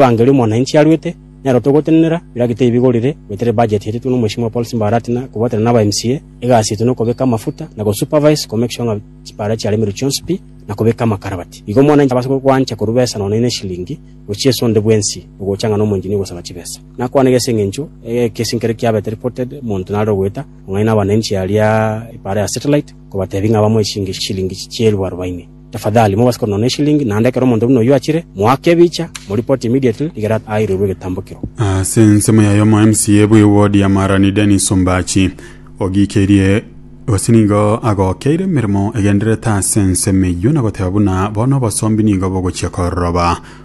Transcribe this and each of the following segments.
Evangeli omwananchi aruete, nero togotenenera, biraki tibigorire, goetera ebudget eretwe n'omweshimiwa Paul Simba Arati na kobwatana naba MCA, egasi yaito nokobeka amafuta na go supervise ko make sure ng'a chipara chiaremerwe chionsi pi na kobeka amakarabati. Igo omwananchi abase gwancha korwa besa nonya ine eshilingi gochia esonde bwensi ogocha ng'a nomoenginia ogosaba chibesa. Nakwanega ase eng'encho egekesi nkere kiabete reported monto nare ogoeta ong'aina abananchi aria ipara ya satellite kobatebi ng'a bamoe chingeshilingi chielfu arobaini. Tafadhali, mobase korwa nonya eshilingi, naende ekero omonto buna oyio achire, moake ebicha, moripoti immediately, rigere airirwe egetambo kiro. Ase ensemo yaye omo MCA bwe ward ya Marani Dennis Ombachi ogiikerie gose nigo agokeire emeremo egendererete ase ensemo eyio na goteba buna bono obosombi nigo bogochia kororoba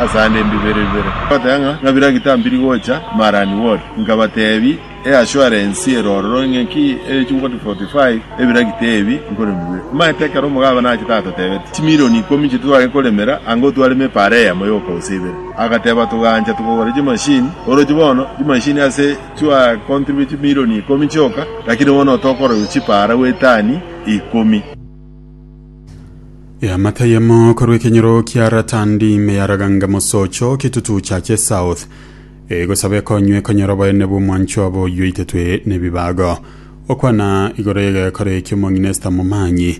asande mbibere bibere, ngobateba ng'a, ng'a bira gitambiri gocha Marani Ward, nkabatebi eassurance ere ororo ng'a ki ere chingoti 45 ebira gita ebi nkorema bibere. Omanyete ekero omogabana achete atotebeti chimilioni ikomi chitwe tware koremera anga otwareme epaara eyemo yoka gose ibere, agateba togancha togora chimashini, oroche bono chimashini ase chwa contribute chimilioni ikomi chioka, lakini bono otokorobiwa chipaara gwetani ikomi. Eamate eyemo korwa ekenyoro kia Ratandi ime ya Raganga mosocho kitutu chache south egosaba ekonywa ekonyora oboene bw'omwancho obo oywo itetwe nebibago okwana igoro y'egekora ekio mong'inesta momanyi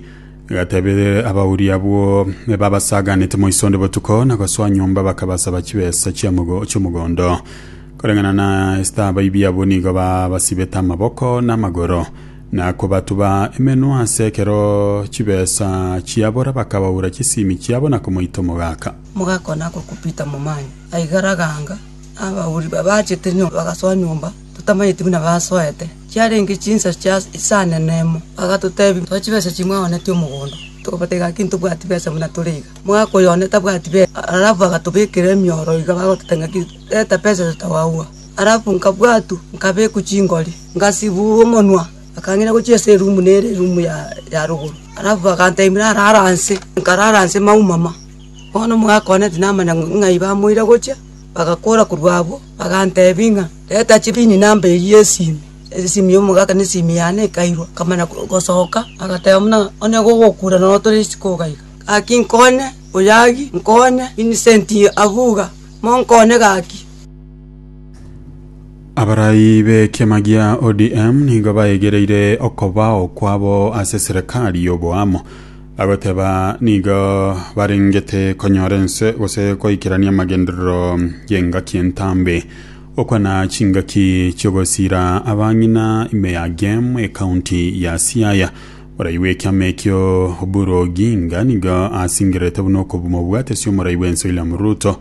gatebere abauri abwo babasaganete moisonde botuko na gosoa nyomba bakabasaba chibesa chiamogo- chiomogondo koreng'ana na esita abaibi abwo nigo babasibete amaboko na amagoro na kobatuba emenwa ase ekero chibesa chiabora, bakabaura chisiimi chiabo na komoita omogaka. Omogaka one agokupita momanye, aigare agaanga, abauri babaachete nyomba bagasoa nyomba, totamanyeti buna basoete. Chiarenge chinsa chia isane nemo, bagatotebia, Soa chibesa echi mwaonetie omogondo. Tokobatega ngaki ntobwati besa buna tore iga. Omogaka oyo one tabwati besa, arabu bagatobekera emioro iga, bagototebia ngaki, Reta besa iso togagwa. Alafu nkabwatwa, nkabekwa chingori, ngasibugwa omonwa. Akang'ina gochia ase erumu nere erumu ya rogoro, alafu aganteebia narare aase. Nkarara aase maumama. Bono omogaka one tinamanya ng'ai bamoira gochia, bagakora korwa abwo, baganteebia ng'a, Reta chibini namba eyio y'esimi. Esimi y'omogaka na esimi yane ekairwa, nkamanya gosoka. Agateba buna, Onye gogokura noro otore risiko iga iga. Gaki nkonye, oyagi, nkonye, Vincent abuga, monkonye gaki. Abarai b'ekiama gia ODM nigo baegereire okobao kwabo ase serikali y'oboamo bagoteba nigo barengete konyora ense gose goikerania amagenderero y'engaki entambe okwana chingaki chi'ogosira abang'ina ime ya gem ekaunti ya siaya morai bw'ekiama ekio oburu oginga nigo asingererete buna okomobwatisia omorai bwense william ruto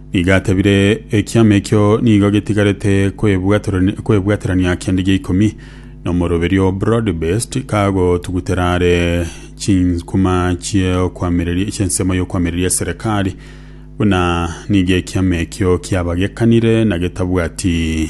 Nigo atebire, Ekiama ekio nigo getigarete kwebwaterani- kwebwaterania kende gia ikomi, na omoroberio o broad-based kagotugutera are chinkuma chi'okwamireria- chi'ensemo y'okwamireria eserekari, buna nigo ekiama ekio kiabagekanire na getabwati